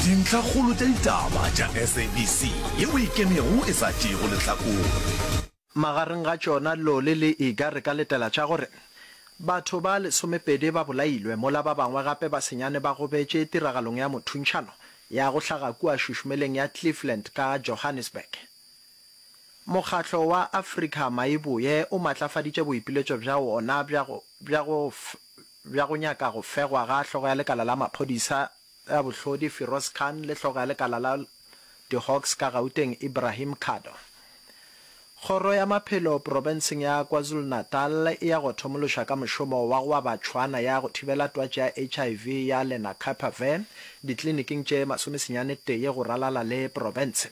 Dintlhakgolo tša ditaba tša SABC yeo e kenego e sa tšeego lehlakore. Magareng ga tšona Loli le Iga re ka letela tša gore batho ba lesomepedi ba bolailwe mola ba bangwe gape ba senyane ba gobetše tiragalong ya mothuntšhano ya go hlaga kua šušumeleng ya Cleveland ka Johannesburg. Mokgatlo wa Afrika Maiboe o matlafaditše boipiletšo bja wona bja go bja go nyaka go fegwa ga hlogo ya lekala la maphodisa a bohlodi Firoz Khan le hlogo ya lekala la di-Hawks ka Gauteng Ibrahim Khado. Kgoro ya maphelo profenseng ya KwaZulu-Natal e ya go thomološa ka mošomo wa go aba tšhwana ya go thibela twatši ya HIV ya Lenacapavir ditliliniking tše masomesenyane tee go ralala le profense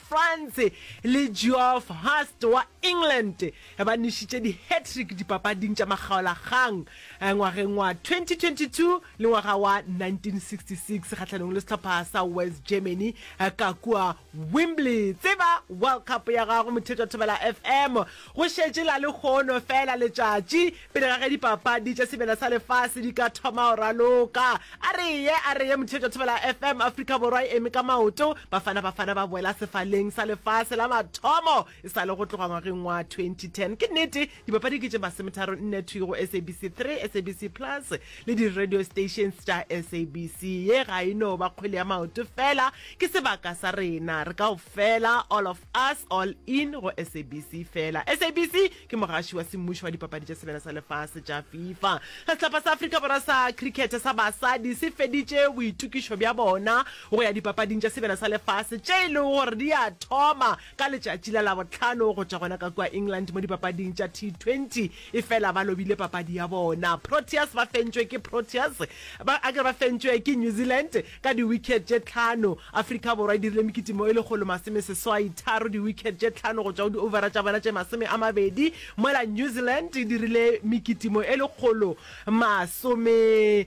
Franz le Geoff Hurst wa England ba nwešitše di-hat-trick dipapading tša makgaolakgang ngwageng wa 2022 le ngwaga wa 1966 kgahlanong le sehlopha sa West Germany ka kua Wembley. Tseba World Cup ya gago, Mothetwa Thobela FM, go šetše la lekgono fela letšatši Pele ga ge dipapadi tša sebele sa lefase di ka thoma go raloka, a re ye, a re ye, Motheetša Thobela FM, Afrika Borwa e eme ka maoto, Bafana Bafana ba boela sefaleng sa lefase la mathomo e sa le go tloga ngwageng wa 2010. Ke nnete, dipapadi ke tše masometharo nne thwi go SABC 3, SABC Plus le di-radio stations tša SABC. Ye ga e no ba kgwele ya maoto feela, ke sebaka sa rena re kaofela, all of us, all in, go SABC feela. SABC! Ke mogaši wa semmušo wa Dipapadi tša Sebele sa Lefase tša Fifa. Sehlopha sa Afrika Borwa sa Cricket sa basadi se feditše boitokišo bja bona go ya Dipapading tša Sebele sa Lefase tše e lego gore di a thoma ka letšatši la Labohlano go tšwa gona ka kua England mo dipapading tša T20. Efela ba lobile papadi ya bona. Proteas ba fentšwe ke Proteas, ba, a ke re ba fentšwe ke New Zealand, Ka diwikhet tše tlhano, Afrika Borwa e dirile mekitimo e lekgolo masome seswai tharo diwikhet tše tlhano go tšwa go di-overa tša bona tše masome a mabedi, mola New Zealand e dirile mekitimo e lekgolo masome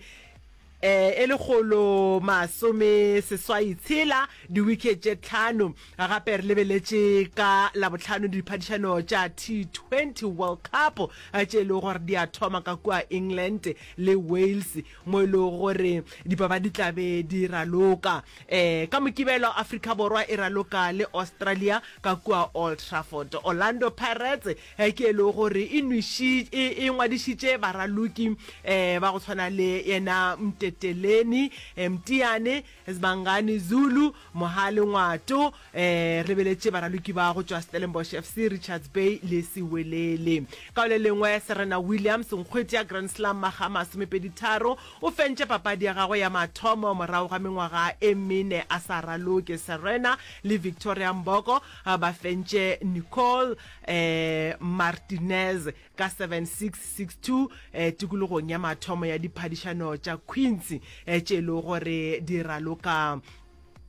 e lekgolo masome seswai tshela diwikhet tše tlhano. Gape re lebeletše ka Labohlano diphadišano tša T20 World Cup tše e lego gore di a thoma ka kua England le Wales. mo e lego gore dipapadi tla be di raloka um ka Mokibelo, Afrika Borwa e raloka le Australia ka kua Old Trafford. Orlando Pirates ke e lego gore e nwešitše e ngwadišitše baraloki um ba go tshwana le yena Mteteleni Mteane Sibangani Zulu, Mohale Ngwato, eh, re beletše baraloki ba go tšwa Stellenbosch FC, Richards Bay le Sewelele. Ka go le lengwe, Serena Williams, nkgweti ya Grand Slam maga masomepedi tharo, o fentše papadi ya gagwe ya mathomo morago ga mengwaga e mene a sa raloke. Serena le Victoria Mboko ba fentše Nicole, eh, Martinez. ka 7662 eh, tikologong ya mathomo ya diphadišano tša queens eh, tše e le gore di raloka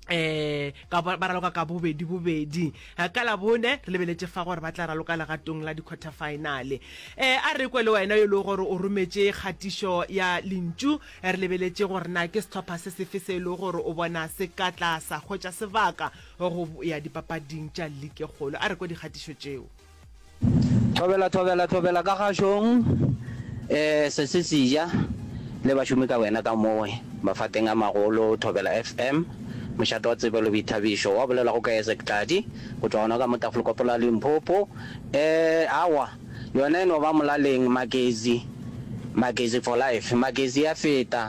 eh ka ba raloka ka bobedi bobedi eh, ka la bone re lebeletse fa gore ba tla raloka legatong la di-quarter finale eh a re kwe le wena yo e le gore o rometse kgatišo ya lentšu eh, re lebeletse gore na ke setlhopha se sefe se e le gore o bona se ka tla sa hwetša sebaka go ya dipapading tša like kgolo a re kwe dikgatišo tšeo Thobela, thobela, thobela ka kgašong, e se se seja, le bašomi ka wena ka mo mafateng a magolo. Thobela FM, mošate wa tsebelo, boithabišo, wa bolelwago ke Isaac Tladi, go tšwa gona ka mo Tafolkopo la Limpopo. E, aowa, yona e no ba Molaleng, Magezi, Magezi for life, Magezi ya feta.